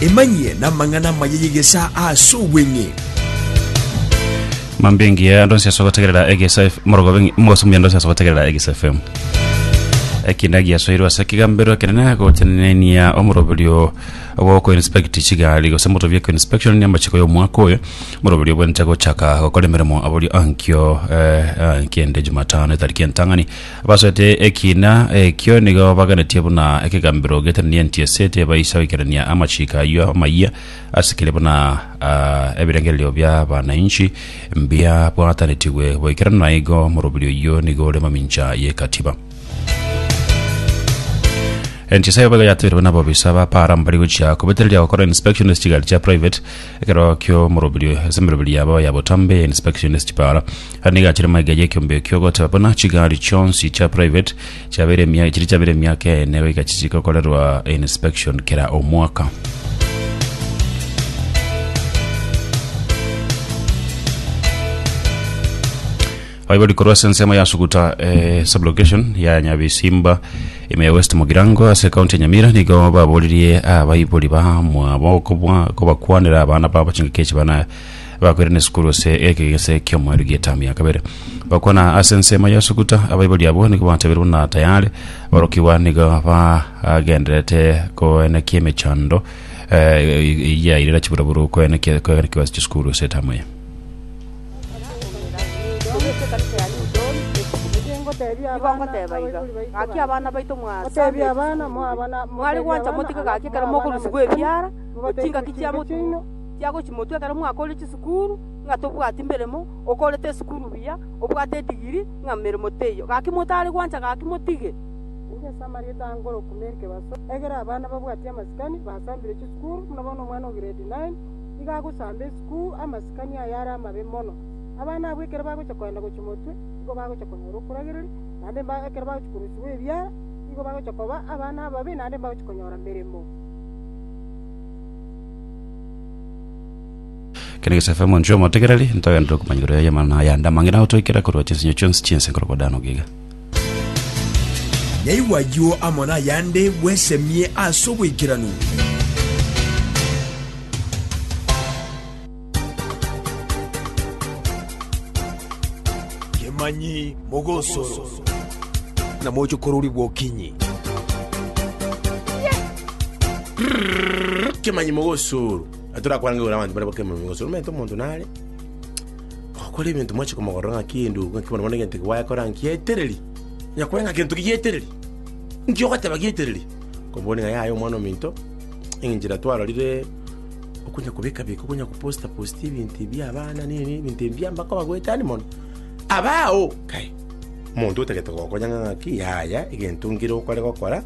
Emanyie n'amang'ana amaya y'egesaa ase obweng'e. Mambia engiya ando nsiasa gotegerera egesa F- morogobe ngi- mogosumia ando nsiasa gotegerera egesa fm ekina giasoirwe ase ekigambero ekenene gotenenia omoroberio ogokoinspect chigari gose motobia koinspection ya amachiko y'omwaka oyo moroberio obwenerete gochaka gokora emeremo aborio ankio eh, ah, kende jumatano etariki entang'ani Abasoete ekiina ekio nigo baganetie buna ekegambero getenenie entiese, tebaisa goikerania amachiko ayio amayia ase kere buna ah, ebirengererio bia banainchi mbiabwatanetigwe boikeranu, na igo morobiri oyio nigo ore mamincha y'ekatiba. Entiesa eye boigo yatebirwe nabobisa ba para mbari gochia kobetereria gokora inspection ase chigari chia private ekero kio morobiri ase emerobiri yabo ya botambe ya inspection ase chipara Nigo achire magega y'ekeombeo ekio, ogoteba buna chigari chionsi chia private chiabeire emia- chiria chiabeire emiaka ene goika chisike gokorerwa inspection kera omwaka. Aibori korwa ase ensemo ya Suguta eh, sublocation ya Nyabisimba ime ya West Mugirango ase county ya Nyamira nigo baboririe abaibori bamwabo kobwa- kobakwanera abana babo chingaki echi bana Bakoirana esukuru ase egegese ki'omoerio gi'etamu ya kabere. Gokwana ase ensemo ya Sukuta, abaibori abwo nigo batabeire buna tayare. Aborokigwa nigo bagendererete koenekia emechando eh, eyia irera chiburoburu koenekia koenekiwa ase chisukuru ase etamu eye. Nigo ngoteba iga, Gaki abana baito mwasame chinguru, mware gwancha motige gaki ekero mokorusigwa ebiara, gochia ingaki chia motumo, chiagochimotwa ekero omwaka oria chisukuru, ng'a tobwati meremo, okorete esukuru buya, obwate edigiri, ng'a meremo teiyo. Gaki motare gwancha gaki motige. Nigo ase amarieta aa nkorokwa Mary Kebaso, ekero abana babwati amasikani basambire chisukuru, buna bono omwana o grade nine nigo agosamba esukuru, amasikani aya are amabe mono. Abana abwo ekero bagocha koenda gochimotwe, nigo bagocha konyora okoragereri, naende mba ekero bagochi korusiwa ebiara, nigo bagocha koba abana ababe naende mbagochi konyora meremo. kene gesefe monchu omotegereri ntogenderere okomanya igoro yaye amana yande amang'ina gotoikera korwa chinsinyo chionsi chiense nkoro kwa dano giga Nyaigwa ayio amo nayande bwesemie ase oboikeranu. Kemanyi mogosoro, na moche kororigwa okinyi. Kemanyi mogosoro. Na torakwange igoro abanto bare bakemanyi mogosoro. Omanyete omonto nare gokora ebinto mwachi komogorora ng'a kende ogo ng'aki bono bono egento eke gwakora ngietereri. Nyakore ng'a gento ki gietereri. Nki ogoteba gietereri? Komboni ng'a yaya omwana ominto, enchera twarorire Okonyakobeka-beka, okonyagoposta-posta ebinto ebi abana, neini, ebinto ebi mbiamba koba goetani mono. Abao! Kai, omonto otagete gokonya ng'a ng'aki, yaya, egento ngire okore gokora,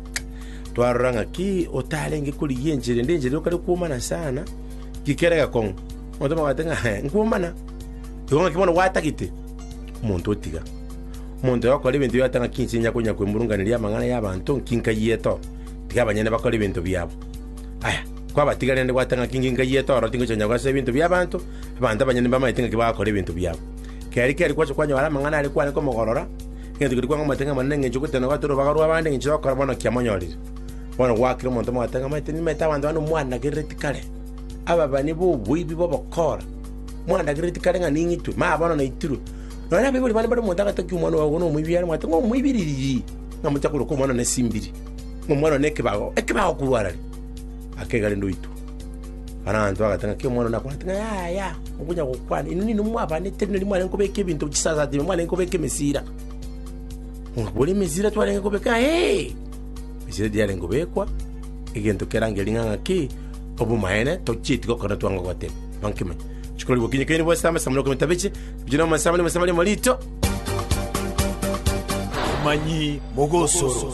twarora ng'aki otarenge korigia enchera ende, enchera yokare kwomana sana, gikere gekong'u. Omonto omobwate ng'a "He, nkwomana. Igo ng'aki bono gwatagete? Omonto otiga. Omonto oyo okora ebinto yoteba ng'aki inche inya konya kwemurunganeria amang'ana y'abanto, nki nkayiete oo? Tiga abanyene bakore ebinto biabo. Aya, Kwabatigarerende gwata ng'aki inge nkayi etoro tingocha konya kogacha ebinto bi'abanto, abanto abanyene mbamaete ng'aki bagakora ebinto biabo. Keri keri gwacha kwanyora amang'ana aria kwane komogorora, egento keria kwang'amaete ng'a Omonene ng'encho goteba na gwatora obobaga rw'abande ng'encho yokora bono kiamonyorire. Bono goakire omonto omogata ng'a amaete nimaete abanto bane omwanagerereti kare, ababani b'oboibi b'obokora, mwanagerereti kare ng'a ning'itwe, maya bono naitirwe. Nonya abaibori bane mbare omonto agatokia omwana oye ogo nomoibi are omwate ng'a omoibiriri, ng'a mochia koroka omwana one simbiri, ng'a omwana one nekebago, ekebago korwa arare. akegare ndoitwe. Baranto bagate ng'a kera omwana one akwanete ng'a yaya, mokonya gokwana, inwe ninwe mwabanete rirorio mware nkobeka ebinto chisasati inwe mwarenge kobeka emesira. Ng'a bori emesira twarenge kobeka ee. Emesira eria yarenge kobekwa, egento kerange ring'a ng'a ki, obomaene tochieti gokora twanga goteba. Manye nkimanye. Rituko riria gokinyi kaini bwase amasaa moroka metabiche, bichire amasaa abane amasaa abane amarito. Amanyi mogosoro.